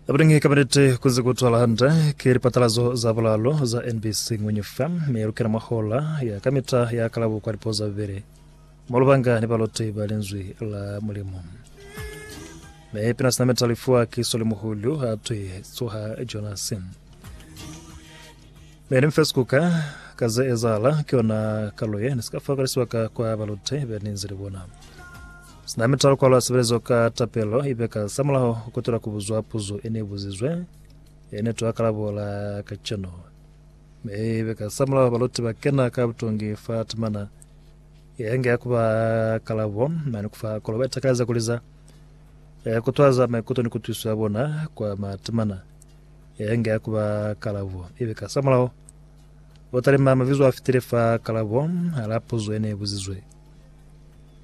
Abulingi kabinete kuze kutwala hande ke lipatalazo za bulalo za NBC Ngwenye FM me ya lukena mwa hola ya kamita ya kalabo kwa lipo za bubele mwa lubanga ni baloti ba linzwi la Mulimu. Me pina sina meta lifuwa ki soli muhulu ha twi tsoha Jonas. Me ni mfesi kuka kaze ezala ki ona kaloye ni sika fakalisiwa ka kwa baloti ba ninzi libona. Sina mitalo kwalo ya sebelezo ka tapelo ibe ka samulaho kutela kubuzwa puzo ene ibuzizwe, ene to akalabo la kacenu. Mi ibe ka samulaho baluti ba kena ka butongi fa temana yenge ya kuba kalabo, mane kufa kolo ba itakaliza kuliza, kutwaza maikuto ni kutwiso ya bona kwa matemana yenge ya kuba kalabo. Ibe ka samulaho batalima mabizo afitile fa kalabo la puzo ene ibuzizwe.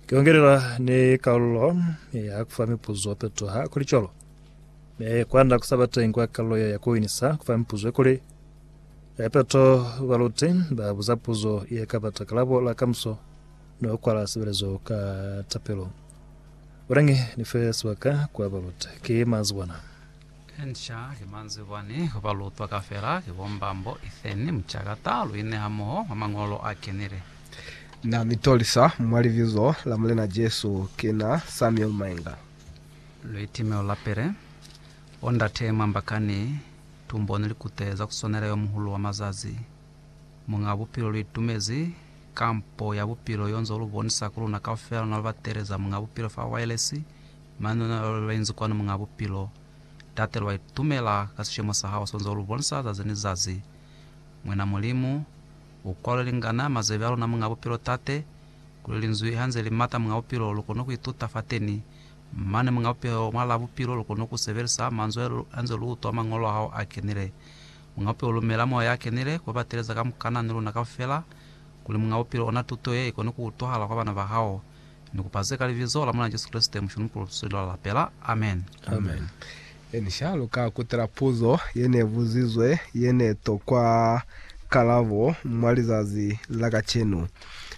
Kiongelela ni kalulo ya kufa mipuzo petoha kuli colo. Me kwanda kusaba teng kwa kalulo ya ya kuinisa kufa mipuzo kuli ya peto baluti ba buza puzo ye ka bata kalabo la kamuso no kwala sebelezo ka tapelo. Bonangi ni fe sebaka kwa baluti. Ki mazi bona. Inca ki manzibwani ku ba lutwa kafela, ki bombambo, Ethan, mucakata, lu ine hamoho mwa mañolo a kenile. Na mi tolisa mwa Libizo la Mulena Jesu, ki na Samuel Mainga. Luitimelo la pili. Bo ndate mwa mbakani, tumboni likute za kuswanela yo muhulu wa mazazi. Muñaa Bupilo lu itumezi kampo ya Bupilo yo nzo lu bonisa ku luna kaufela na lu bateleza Muñaa Bupilo fa wailesi, Manuna a lwa inzi kwanu Muñaa Bupilo, Tate, lwa itumela ka sishemo sa Hao sonzwa ulu bonisa zazi ni zazi. Mwena Mulimu, U kwalwe lingana mazebe a luna Muñaa Bupilo, Tate, kuli Linzwi hanze li mata Muñaa Bupilo, lu kone ku ituta fateni. Mane Muñaa Bupilo, Mwalaa Bupilo, lu kone ku sebelisa manzwi hanze lu utwa Mañolo a Hao a kenile. Muñaa Bupilo, lumela Moya ya Kenile ku bateleza kamukana ni luna kaufela, kuli Muñaa Bupilo, ona tuto ye ikone ku utwahala kwa bana ba Hao. Ni kupa ze ka Libizo la Mulena Jesu Kreste, Mushulu Mukulu, Lusweli lwa Lapela. Amen. Amen. Ni sha luka kutela puzo ye ne buzizwe ye ne tokwa kalabo mwa lizazi la kacenu.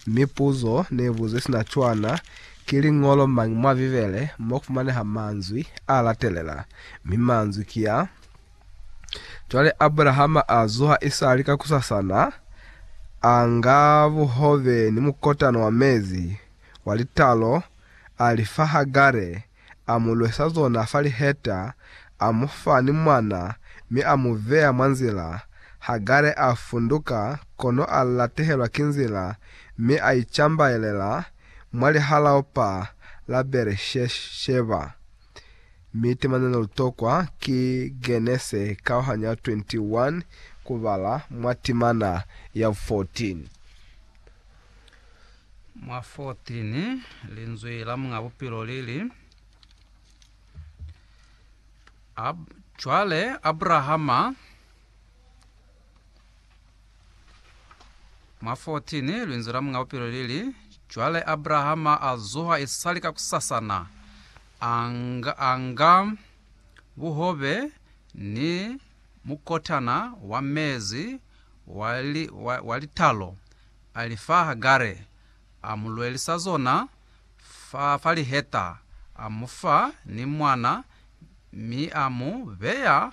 Mi puzo ne buzwe sina cwana, Ki liñolo mañi mwa Bibele mo kufumaneha manzwi a latelela? Mi manzwi ki a. Cwale Abrahama a zuha isali kakusasana, a nga buhobe ni mukotana wa mezi wa litalo, a li fa Hagare, a mu lwesa zona fa liheta, a mu fa ni mwana, mi a mu beya mwa nzila. Hagare a funduka, kono a latehelwa ki nzila, mi a icambaelela mwa lihalaopa la Beeresheba. Mi tema ne lu tokwa ki Genese kauhanya 21 ku bala mwa timana ya 14. Mwa 14, Linzwi la Muñ'a Bupilo li li, Ab, cwale Abrahama, Mwa 14, linzwi la Muñ'a Bupilo li li, Cwale Abrahama a zuha isali kakusasana, a nga, a nga buhobe ni mukotana wa mezi wa, li, wa, wa litalo, a li fa Hagare, a mu lwelisa zona fa, fa liheta, a mu fa ni mwana, mi a mu beya